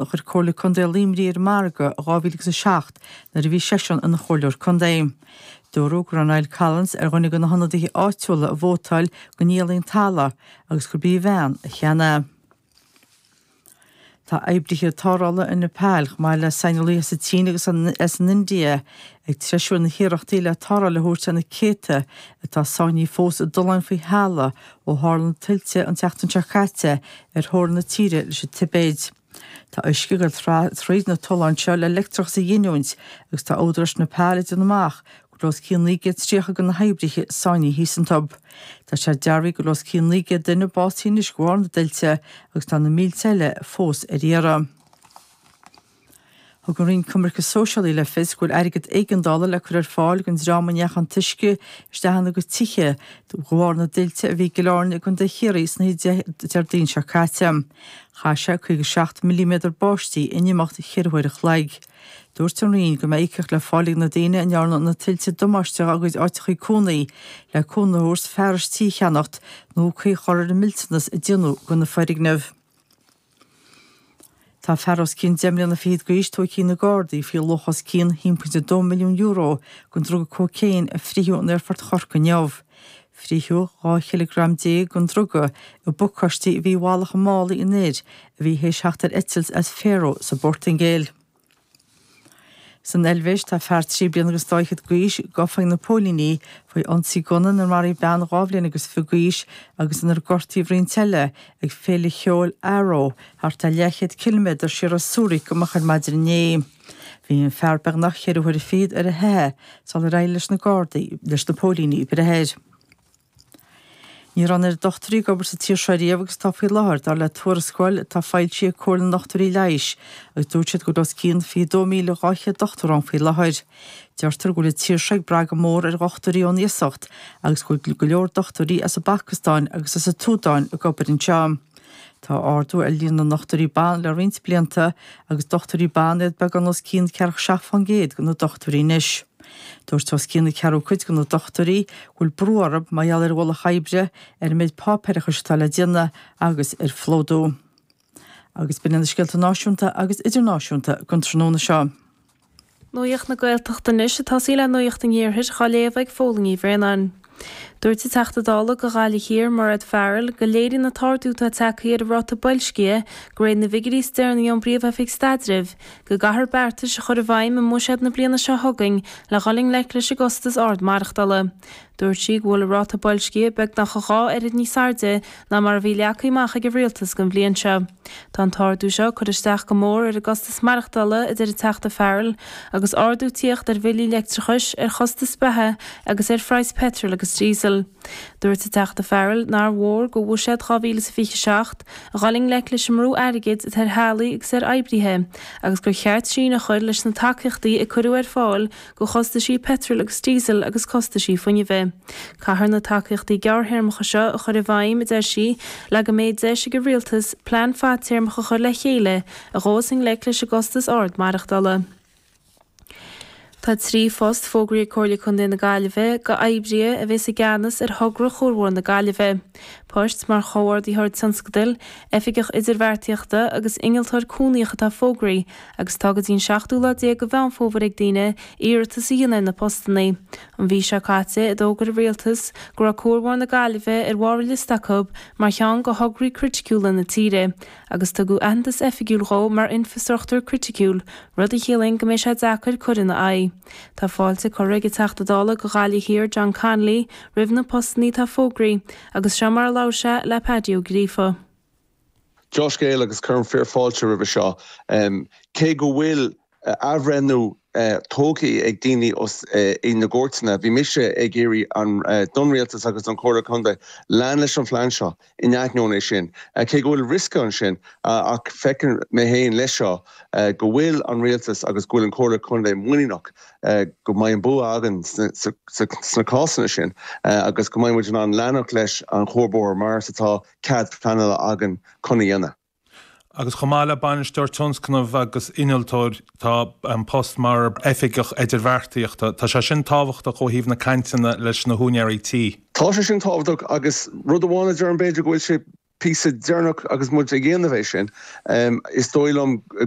a chuir Comhairle Contae Luimnigh ar an margadh i 2007 nuair a bhí seisean ina Chomhairleoir Contae. Dúradh go raibh Niall Collins ar dhuine de na hionadaithe áitiúla a vótáil go ndíolfaí an talamh agus gurb í a bhean a cheannaigh é. Tá oibrithe tarrthála i Nepal, chomh maith le saineolaithe as an tSín agus as an India, ag treisiú na n-iarrachtaí le tarrtháil a thabhairt do na céadta atá sáinnithe fós i dtolláin faoi thalamh Ó tharla na tuilte an tseachtain seo caite ar theorainn na tíre leis an Tibéid, tá uisce ag dul thríd na tolláin seo le leictreachas a ghiniúint agus tá údaráis Nepal ag déanamh amach go bhfuil os cionn 930 de na hoibrithe sáinnithe thíos iontub. Tá sé dearbhaithe go bhfuil os cionn 900 duine básaithe anois de bharr na dtuilte agus tá na mílte eile fós ar iarraidh. Thug an Roinn Coimirce Sóisialaí le fios go bhfuil airgead éigeandála le cur ar fáil don dream a ndeachaigh an t-uisce isteach ina gcuid tithe de bharr na dtuilte a bhí i gCill Airne i gcontae Chiarraí san oíche Déardaoin seo caite. Chaith sé 57 milliméadar báistí in imeacht cheithre huaire a chloig. Dúirt an Roinn go mbeidh íocaíocht le fáil ag na daoine a ndearna na tuilte damáiste dá gcuid áiteacha cónaí le cúnamh a thabhairt fearais tí a cheannacht nó caoi a chur ar an millteanas a déanadh do na foirgnimh. Tá fear os cionn deich mbliana fichead d'aois tógtha ag na Gardaí faoi luach os cionn €1.2 milliún den druga cócaon a fritheadh in aerfort Chorcaí inniu. Fritheadh 12 chileagram den druga i bpacáistí a bhí i bhfalach i málaí an fhir a bhí théis theacht ar eitilt as Faro sa bPortaingéil. San Eilvéis, tá fear trí bliana agus dá fhichead d'aois gafa ag na póilíní faoi ionsaí gunna inar maraíodh bean dhá bhliain agus fiche d'aois agus inar gortaíodh roinnt eile ag féile cheoil in Aarau thart ar leathchéad ciliméadar siar ó Zurich amach ar maidin inné. Bhí an fear beagnach ceithre huaire fichead ar a theitheadh sular éirigh leis na Gardaí, leis na póilíní breith air. Ní raibh an oiread dochtúirí ag obair sa tír seo riamh agus atá faoi láthair, dar le tuarascáil atá foilsithe ag Comhairle na nDochtúirí Leighis, agus dúirt siad go bhfuil os cionn 22,200 dochtúir ann faoi láthair. Deirtear go bhfuil an tír seo ag brath go mór ar dhochtúirí ón iasacht agus go bhfuil go leor dochtúirí as an bPacastáin agus as an tSúdáin ag obair anseo. Tá ardú ar líon na ndochtúirí ban le roinnt blianta agus dochtúirí ban iad beagán os cionn 47% de na dochtúirí anois. Dúirt os cionn a ceathrú cuid de na dochtúirí go bhfuil brú orthu mar gheall ar an ualach oibre, ar an méid páipéarachais atá le déanamh agus ar phlódú agus b'in iad na scéalta náisiúnta agus idirnáisiúnta don tráthnóna seo. Nuacht na Gaeltachta anois ag tosaí le nuacht an iarthair á léamh ag Póilín Ní Bhraonáin. Dúirt an Teachta Dála do Ghaillimh Thiar Mairéad Farrell go léiríonn an t-ardú atá tagtha ar an ráta boilscithe go réir na bhfigiuirí is deireanaí ón bPríomh-Oifig Staidrimh go gcaithfear beartais a chur i bhfeidhm i mbuiséad na bliana seo chugainn le dhul i ngleic leis an gcostas ard maireachtála. Dúirt sí go bhfuil an ráta boilscithe beagnach a dhá oiread níos airde ná mar a bhí leagtha amach ag an rialtas don bhliain seo. Tá an t-ardú seo ag cur isteach go mór ar an gcostas maireachtála, a deir an Teachta Farrell, agus ardú tíocht ar bhillí leictreachais, ar chostais beatha agus ar phraghas peitril agus díosail. Dúirt an Teachta Farrell nár mhór do Bhuiséad 2027 a dhul i ngleic leis an mbrú airgid atá ar theaghlaigh agus ar oibrithe agus gur cheart síneadh a chur leis na tacaíochtaí a cuireadh ar fáil do chostaisí peitril agus díosail agus costaisí fuinnimh. Caithfear na tacaíochtaí gearrthéarmacha seo a chur i bhfeidhm, a deir sí, le go mbeidh deis ag an rialtas plean fadtéarmach a chur le chéile a ghabhfas i ngleic leis an gcostas ard maireachtála. Tá trí phost fógraí ag Comhairle Contae na Gaillimhe d'oibrithe a bheas i gceannas ar Thogra Chuarbhóthar na Gaillimhe, poist mar Chomhordaitheoir Tionscadail, Oifigeach Idirbheartaíochta agus Innealtóir Cónaitheach atá fógraí, agus tá go dtí an seachtú lá déag de Mheán Fómhair ag daoine iarratas a dhéanamh ar na postanna. An mhí seo caite a d'fhógair an rialtas go raibh Cuarbhóthar na Gaillimhe ar bharr a liosta acu mar cheann de thograí criticiúla na tíre agus tugadh aitheantas oifigiúil dhó mar infreastruchtúr criticiúil, rud a chiallaíonn go mbeidh sé deacair cur ina aghaidh. Tá fáilte curtha ag an Teachta Dála do Ghaillimh Thiar John Connolly roimh na postanna atá fógraí agus seo mar a labhair sé le Páidí Ó Gríofa. Dea-scéal, agus cuirim fíor fáilte roimhe seo. Cé go bhfuil athbhreithniú tógtha ag daoine ins na cúirteanna, bhí mise ag iarraidh don rialtas agus don Chomhairle Contae lean leis an phlean seo in ainneoin é sin, cé go bhfuil riosca ansin. Ach feiceann mé féin leis seo go bhfuil an rialtas agus go bhfuil an Chomhairle Contae muiníneach go mbeidh an bua againn sna cásanna sin agus go mbeidh muid in ann leanacht leis an chuarbhóthar mar is atá. cead pleanála againn chun a dhéanamh. Agus chomh maith le Bainisteoir Tionscnamh agus Innealtóir, tá an post mar Oifigeach Idirbheartaíochta. Tá sé sin tábhachtach ó thaobh na cainteanna leis na húinéirí tí. Tá sé sin tábhachtach agus rud amháin a déarfainn b'fhéidir go bhfuil sé píosa deireanach agus muid ag déanamh é sin, is dóigh liom go.